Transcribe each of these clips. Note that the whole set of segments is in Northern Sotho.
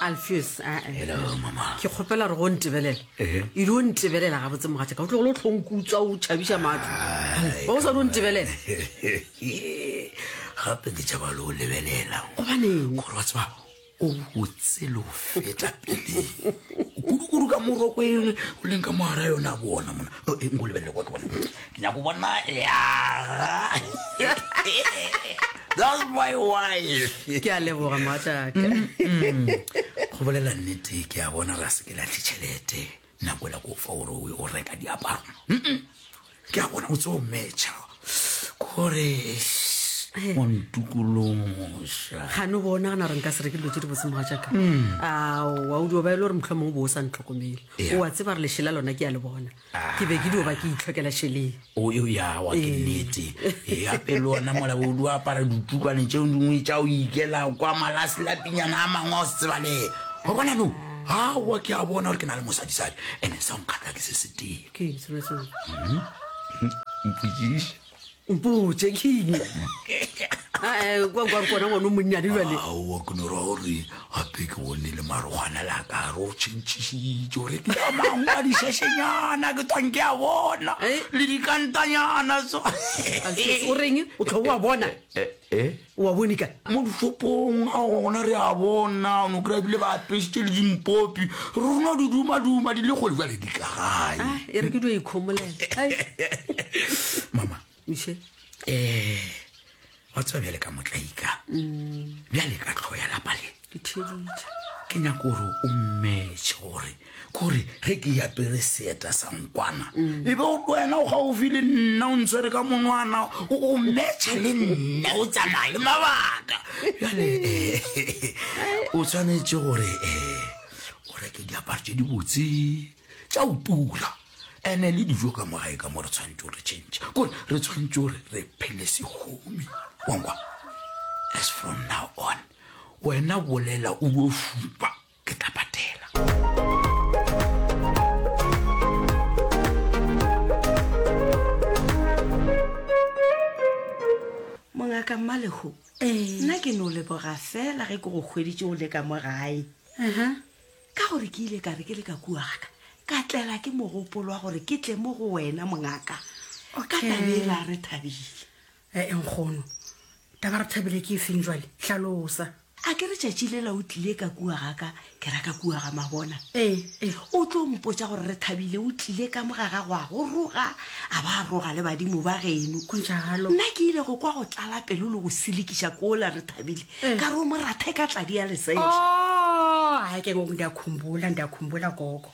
alfius ae Hello, mama. ke kgopela gore go ntebelela Ehe. e di o ntebelela gabotse mogatša ka o tlogolo o tlhonkutswa o tšhabiša matlo ba o sa di o ntebelela gape ke tšaba le o lebelela gobaneng gore wa tseba o botse le o feta pele kudu-kudu ka moroko e o leng ka mogara yona bona mona O, e, nko lebelele kwa ke bona Ke nyaka go bona yaga. That's my wife. Ke a leboga mogatšaka. Mm-hmm. Go bolela nnete ke a bona ra se ke latlhe tšhelete nako e la ko fa gore o reka diaparo. Ke a bona o tse o metšha kore eh. o ntukološa. Ga no bona gana re nka se reke dilo tse di botse mogatšaka. Mm. Aowa o dio ba e le gore motlho mongwe bo o sa ntlhokomele. O a tseba re lešela lona ke a le bona. ke be ke dio ba ke itlhokela šeleng o yo ya wa ke Ee. nnete e gape le ona mola o di apara ditukwane tšeo dingwe tša o ikela kwa malase la pinyana a mangwe a o se tsebale wa bona no awa ke a bona gore ke na le mosadisadi ene sa nkgatla ke se se tee ke eng selo seo mpotšiše mpotse keng Eh, kwa kwa re kona ngwana o monnyane jale aowa ke no ra gore gape ke bone le marogwana la ka re o tšhentšhisitse gore ke ya mangwa dišešenyana ke twang ke a bona Eh? le dikantanyana so o reng o tlho wa bona Eh, eh, O a bone ka. Mo dishopong a go gona re a bona o no kry-a bile ba apešitše le dimpopi rona di dumaduma di le kgole jale di ka gae Ah, e re ke dio ikhomolela Ai, mama Mishe. um wa tseba bjale ka motlaika bjale ka tlho ya lapa le ke theeditše ke nyaka gore o mmetšhe gore kore ge ke yapere seeta sa nkwana mm. e be o wena o gaufi le nna o ntshwere ka monwana o mmetšha le nna o tsamaya le mabaka jale o tshwanetse gore um o reke diaparo tse di botse tša o tula ene le dijo ka mo gae ka mo re tshwanetse gore change kore re tshwanetse gore re phele segomi wankwa as from now on Wena bolela o yo fupa ke tla patela. Mongaka Mmalehu, nna ke no leboga fela ge ke go hweditše o le ka mo gae. Ka gore ke ile ka re ke le ka kua ga ka, ka tlela ke mogopolo wa gore ke tle mo go wena mongaka. Ka taba e la re thabile. Ee, nkgono. Taba re thabile ke efeng jwale? Hlalosa. A ke re tšatši lela o tlile ka kua ga ka, ke ra ka kua ga Mabona. Ee, ee. O tlo mpotša gore re thabile o tlile ka mo ga gago a go roga, a ba a roga le badimo ba geno. Go ntša galo. Nna ke ile go kwa go tlala pelo le go selekiša kola re thabile, Ee. ka re o mo rathe ka tladi ya leseša. Oo, a ke ngoko ndi a khumbola, ndi a khumbola, gogo.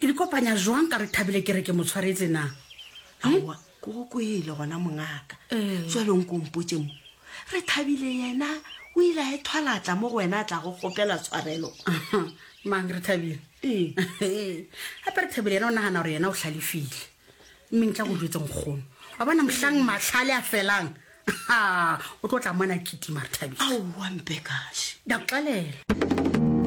Ke di kopanya jwang ka re Thabile ke re ke mo tshwaretse na? Aowa, ke go kwele gona mongaka. Tswelong ko mpotše mo. Re Thabile yena o ile a ethwala tla mo go wena a tla go kgopela tshwarelo. Mang re Thabile? Ee. Gape re Thabile yena o nagana gore yena o hlalefile. Mme ntla go jwetse nkgono. Wa bona mohlang mahlale a felang. Ha, o tlo tla mona kitima re Thabile. Aowa Mpekaši. Ke a go tlalela.